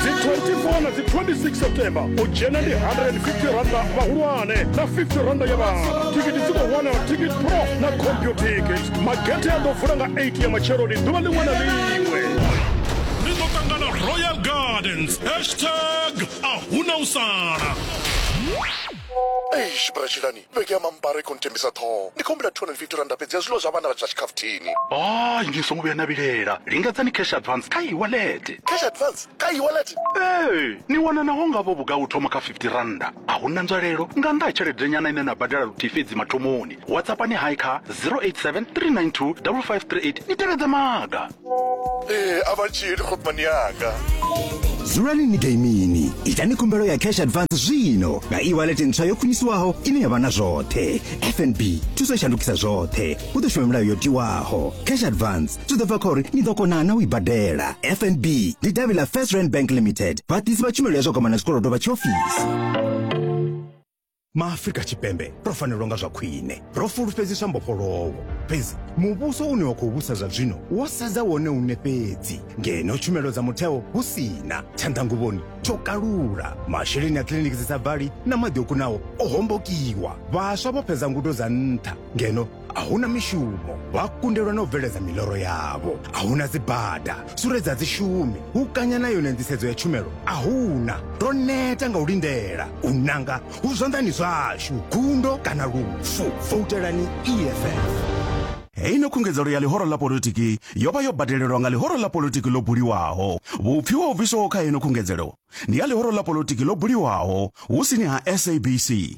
dzi 24 na dzi 26 september u dzhena ndi 150 randa vhahulwane na 50 randa ya vhana thikiti dzi khou wanala ticket pro na computikit magethe a ḓo vula nga 8 ya matsheloni ḓuvha ḽiṅwe na ḽiṅwe ni ḓo ṱangana royal gardens hashtag a huna u sala eish bratshilani Vhege ya mambaro i khou nthembisa ṱhoho. Ndi khou humbela R250 fhedzi ya zwiḽiwa zwa vhana vha zwa tshikhafuthini. Hai, ni songo vhuya na vhilela. Lingedzani Cash Advance kha e-wallet. Cash Advance kha e-wallet? Ee, ni wana naho nga vho vhugai u thoma kha R50. A hu na nzwalelo nga nnḓa ha tshelede-nyana ine na badela luthihi fhedzi mathomoni. WhatsAppani hai kha 0873925538 ni tevhedze maga. ee a vha tshili khopmani yanga dzulani ni gaimini itani khumbelo ya cash advance zwino nga e-wallet ntswa yo khwiniswaho ine ya vha na zwoṱhe fnb thuso i shandukisa zwoṱhe u ḓo shuma milayo yo tiwaho cash advance zwi ḓo bva kha uri ni ḓo kona na u i badela fnb ndi davhi ḽa first rand bank limited vhaḓisi vha tshumelo ya zwa kwamana zwikolodo vha tshiofisi maafrika tshipembe ro fanelwa nga zwa khwine ro fulufhedziswa mbofholowo fhedzi muvhuso une wa khou vhusa zwa zwino wo sedza wone une fhedzi ngeno tshumelo dza mutheo hu sina tshanḓanguvhoni tsho kalula masheleni a kiliniki dzi sa bvali na maḓi o kunaho o hombokiwa vhaswa vho fhedza ngudo dza nṱha ngeno a hu na mishumo vha kundelwa na u bveledza miḽoro yavho a hu na dzibada sure dza dzishumi hu kanya na yone nḓisedzo ya tshumelo a hu na ro neta nga u lindela u nanga hu zwanḓani zwashu gundo kana lufu voutelani eff heino khungedzelo ya ḽihoro ḽa politiki yo vha yo badelelwa nga ḽihoro ḽa politiki ḽo buliwaho vhupfi ho bviswaho kha heino khungedzelo ndi ha ḽihoro ḽa politiki ḽo buliwaho hu sini ha sabc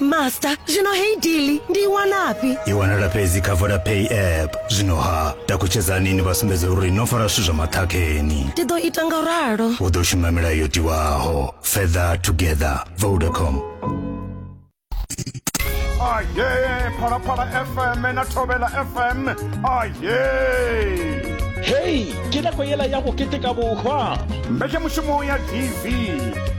master zwino heyi dili ndi i wanafhi i wanala fhedzi kha vodapay app zwino ha takutshedzani ni vha sumbedza uri no fara zwithu zwa maṱhakheni ndi ḓo ita nga ralo u ḓo shuma milayo yo tiwaho feather together vodacom aye phalaphala fm na thobela fm aye hei ke nako yela ya go keteka bohwa mbekemushumo ya tv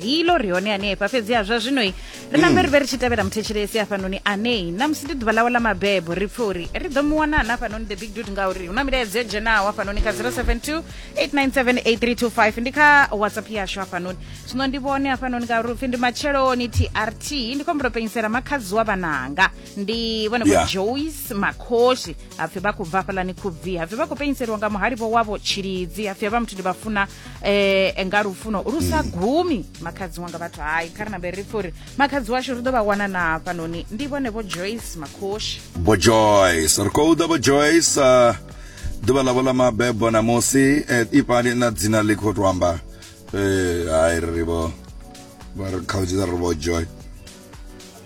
rilo ri hone hanefha fhedzi ha zwa zwinoi ri nambe ri vhe ri tshi tevhela muthetshelesi hafhanoni anei na musi ndi ḓuvha ḽawe ḽa mabebo ri pfe uri ri ḓo mu wana na hafhanoni the big dude ngauri hu na milaedza yo dzhenaho hafhanoni kha 072 897 ndi kha whatsapp yashu hafhanoni zwino ndi vhone hafhanoni ngauri upfi ndi matsheloni trt ndi khou mbulo penyisela makhadzi wa vhananga ndi vhone vho Yeah. joyce makhoshi hapfi vha khou bva hafhalani khubvi hapfi vha khou penyiseliwa nga muhalivho wavho tshilidzi hapfi havha muthu ndi vha funa eh nga lufuno lu sa mm. gumi makhadzi wanga vhathu hayi kha ri nambe ri pfha uri makhadzi washu ri ḓo vha wana na hafhanoni ndi vhone vho joyce makhoshi vho joyce ri khou ḓa vho joyce uh, ḓuvha ḽavho ḽa mabebo ṋamusi eh, ipani na dzina ḽi khou to amba eh, hayi ri vho vha ri khaudzi ri vho joy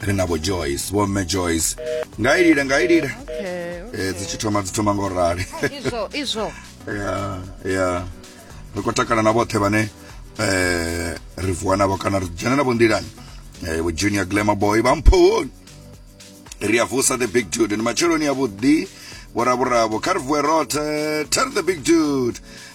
ri na vho joyce vho mme joyce nga ilile nga ilile okay, okay. Eh, dzi tshi thoma dzi thoma ngo rali izwo izwo ya ya ri khou takala na vhoṱhe vhane eh ri vuwa navho kana ri dzhena navho nḓilani eh vho junior glamour boy vha mphoni ri a vusa the big dude ni matsheloni a vhuḓi vhoravhuravo kha ri vuwe roṱhe tell the big dude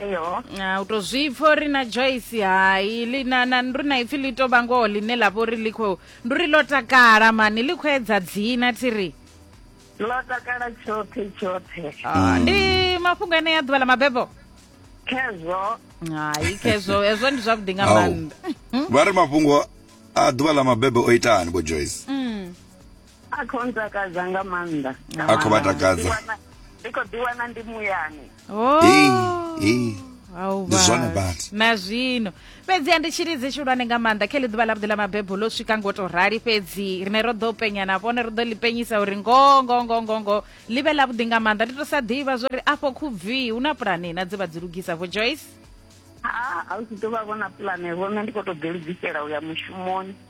eyo Ah, u tou zwi pfa uri na joyce hai ḽi- na- na- ndi uri na ipfi ḽi tou vha ngoho ḽine ḽa vha uri ḽi khou ndi uri ḽo takala mani ḽi khou edza dzina thiri ḽo takala tshoṱhe tshoṱhe Ah, ndi mafhungo ane ya ḓuvha ḽa mabebo khezwo hai khezwo hezwo ndi zwavhuḓi nga Au. maanḓa vha ri mafhungo a ḓuvha ḽa mabebe o itani vho joyce Mm. a khou ntakadza nga maanḓa nga A khou vha maanḓa. takadza. Ndi wana- ndi khou ḓi wana ndi muyani Oh. Hey, hey. Au Ndi zwone vha. badi. na zwino fhedziha ndi tshilidzi tshihulwane nga maanḓa khe ḽi ḓuvha ḽavhuḓi ḽa mabebo ḽo swika ngo to rali fhedzi rine ro ḓo penya na vhone ro ḓo ḽi penyisa uri ngoho ngoho ngoho ngoho ngoho ḽi vhe ḽavhuḓi nga maanḓa ndi to sa ḓivha zwo ri afho khubvi hu na pulane na dze vha dzi lugisa vho joyce ha a u tshi ḓo vha vhona pulane vho nṋe ndi khou tou ḓilugisela u ya mushumoni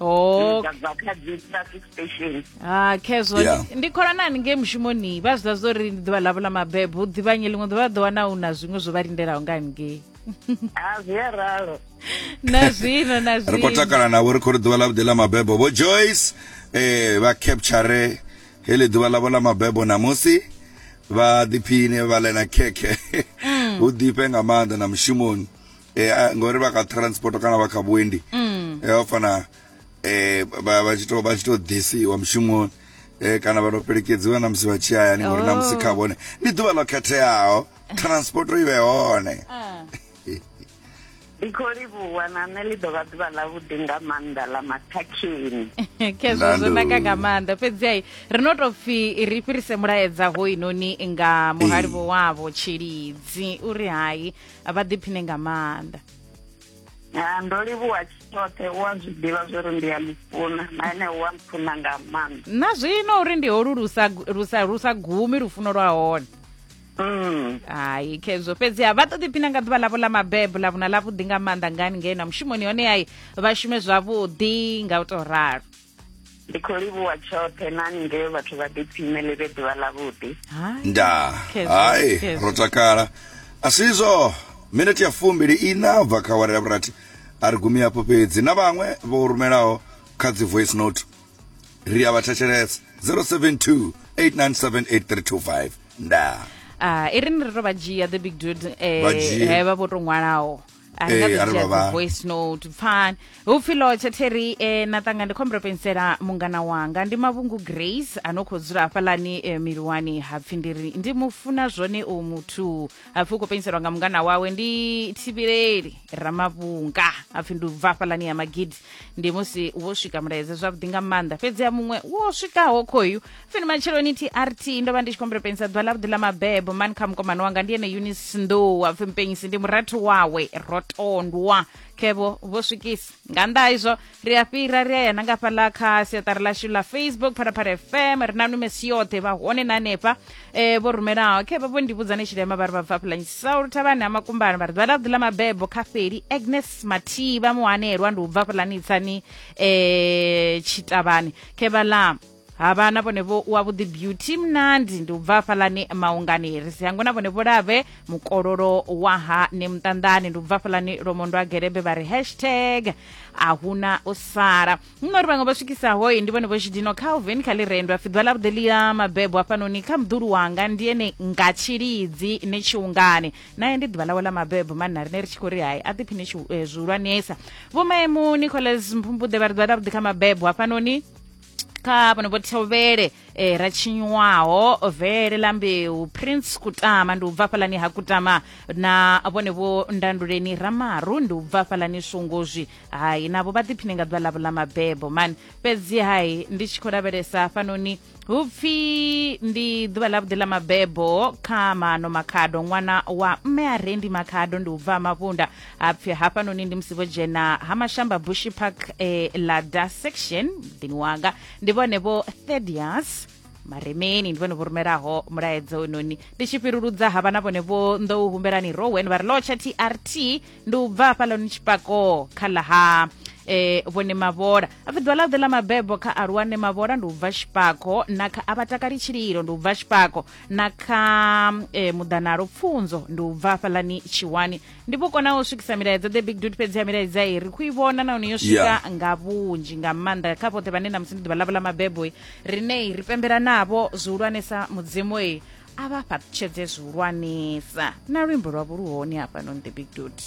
oh dza bva kha dzi traffic station ha khezwo Yeah. ndi- ndi khonanani ngei mushumoni vha zwi ḓa zwo ri ndi ḓuvha ḽavho ḽa mabebo hu ḓivhanye ḽiṅwe ḓuvha vha ḓo wana hu na zwiṅwe zwo vha lindelaho nga ngei a zwi a ralo na zwino na ri khou zwino takala navho ri khou ri ḓuvha ḽavhuḓi ḽa mabebo vho joyce eh vha capture heḽi ḓuvha ḽavho ḽa mabebo namusi vha ḓiphine vha ḽena khekhe hu ḓifhe nga maanḓa na mushumoni eh, a- ngori vha kha transport kana vha kha vhuendi Mm. eh, vha fana eh, vha vha tshi to- vha tshi to ḓisiwa mushumoni eh, kana vha to fhelekedziwa na musi vha tshi hayani ngori na musi Oh. kha vhone ndi ḓuvha ḽo khetheaho transport i vhe hone Ah. ndi khou livhuwa na nṋe ḽi ḓo vha ḓuvha ḽavhuḓi nga maanḓa ḽa mathakhini khezwo zwo Nando. naka nga maanḓa fhedzi ai ri no tou pfhi ri fhirise mulaedza hoinoni nga muhali Ee. vho wavho tshilidzi uri hai a vha ḓiphine nga maanḓa ya ndo livhuwa tshoṱhe u a zwi ḓivha zwo ri ndi a mufuna na ene u a mfuna nga maanḓa na zwino uri ndi holu lu sa gumi lufuno lwa hone mm. hayi khezwo fhedziha vha ṱoḓi phina nga ḓuvha ḽavho ḽa mabebo ḽa vhuna ḽavhuḓi nga maanḓa ngani ngei na mushumoni hone yayi vha shume zwavhuḓi nga u tou ralo ndi khou livhuwa tshoṱhe na nge vhathu vha ḓiphine ḽi vhe ḓuvha ḽavhuḓi Hai. nda Khezwo, hai khezwo. ro takala a si izwo minete ya fumbili ina bva kha awara ya vhurathi a ri gumi hafho fhedzi na vhaṅwe vho rumelaho kha dzi voice note ri a vha thetshelesa 072 8978 nda Ah, i ri ni ri to vha dzhia the big dude eh, Vha dzhie. he vha vho to ṅwalaho I Ee, haven't arali vha heard the vha- voice note pfani hupfi lotsha terry eh, na tanga ndi khombela pensela mungana wanga ndi mavhungu grace ano khou dzula hafhalani eh, miliwani hapfi ndiri ndi mufuna zwone u muthu hapfi u khou penselwa nga mungana wawe ndi thivhileli ramavhunga hapfi ndi ubva hafhalani ya magidi ndi musi wo swika mulaedza zwavhuḓi nga maanḓa fhedzi ya muṅwe wo swikaho khoyu fini matsheloni trt ndo vha ndi tshi khombela penisa ḓuvha ḽavhuḓi ḽa mabebo mani kha mukomana wanga ndi ene eunice nḓou apfi mpenyisi ndi murathu wawe rotondwa khevho vho swikisa nga nnḓa ha izwo ri a fhira ri a ya na nga fhaḽa kha siaṱari ḽashu ḽa facebook phalaphala fm ri na numesi yoṱhe vha hone na hanefha um vho rumelaho khevha vho ndi vhudza ni tshilema vha ri vha bva pulanyisi saulu thavhani ha makumbana vha ri ḓuvha ḽavhuḓi ḽa mabebo kha feli agnes mathivha muhanelwa ndi u bva pulani tsani um tshitavhani khevha ḽa havha na vhone vho wa vhuḓi beauty mnandi ndi u bva hafhaḽani maungani ri si hango na vhone vho lave mukololo wa ha ne muṱanḓani ndi u bva hafhaḽani lomondo a gerebe vha ri hashtag a huna u sala nno ri vhaṅwe vha swikisaho ndi vhone vho tshidino calvin kha lirendo a fiḓwa ḽa vhuḓi ḽia mabebo hafhanoni kha muḓulu wanga ndi ene nga tshilidzi ne tshiungani naye ndi ḓuvha ḽawe ḽa mabebo manna rine ri tshi khou ri hai a ḓiphine eh, zwihulwanesa vho maemu nicholas mphumbuḓe vha ri ḓuvha ḽa vhuḓi kha mabebo hafhanoni kha vhano vho thovhele eh, ra tshinywaho vele ḽa mbeu prince kutama ndi u bva fhalani ha kutama na vhone vho ndanduleni ramaru ndi u bva fhalani swongozwi hai navho vha ḓiphine nga ḓuvha ḽavho ḽa mabebo mani fhedzi hai ndi tshi khou lavhelesa fanoni hu pfi ndi ḓuvha ḽavhuḓi ḽa mabebo kha mano makhado ṅwana wa mme a rendi makhado ndi u bva mavhunda ha pfi hafhanoni ndi musi vho dzhena ha mashamba bushy park eh, lada section muḓini wanga ndi vhone vho thedias maremeni ndi vhone vho rumelaho mulaedza ononi ndi tshi fhiruludza havha na vhone vho ndo u humbelani rowen vha ri lotsha trt ndi u bva hafhaḽoni tshipako kha ḽa ha eh vhone mavhola apfi ḓuvha ḽa ḓe ḽa mabebo kha aluwane mavhola ndi u bva tshipako na kha a vha takali tshililo ndi u bva tshipako na kha eh, muḓanalo pfunzo ndi u bva hafhaḽani tshiwani ndi vho kona u swikisa milaedza the big dude fhedzi ya milaedza i ri khou i vhona nahone yo swika Yeah. nga vhunzhi nga maanḓa kha vhoṱhe vhane namusi ndi ḓuvha ḽavho ḽa mabebo i rine i ri pembela navho zwihulwanesa mudzimu i a vha fhaṱutshedze zwihulwanesa na luimbo lwavho lu hone hafhanoni the big dude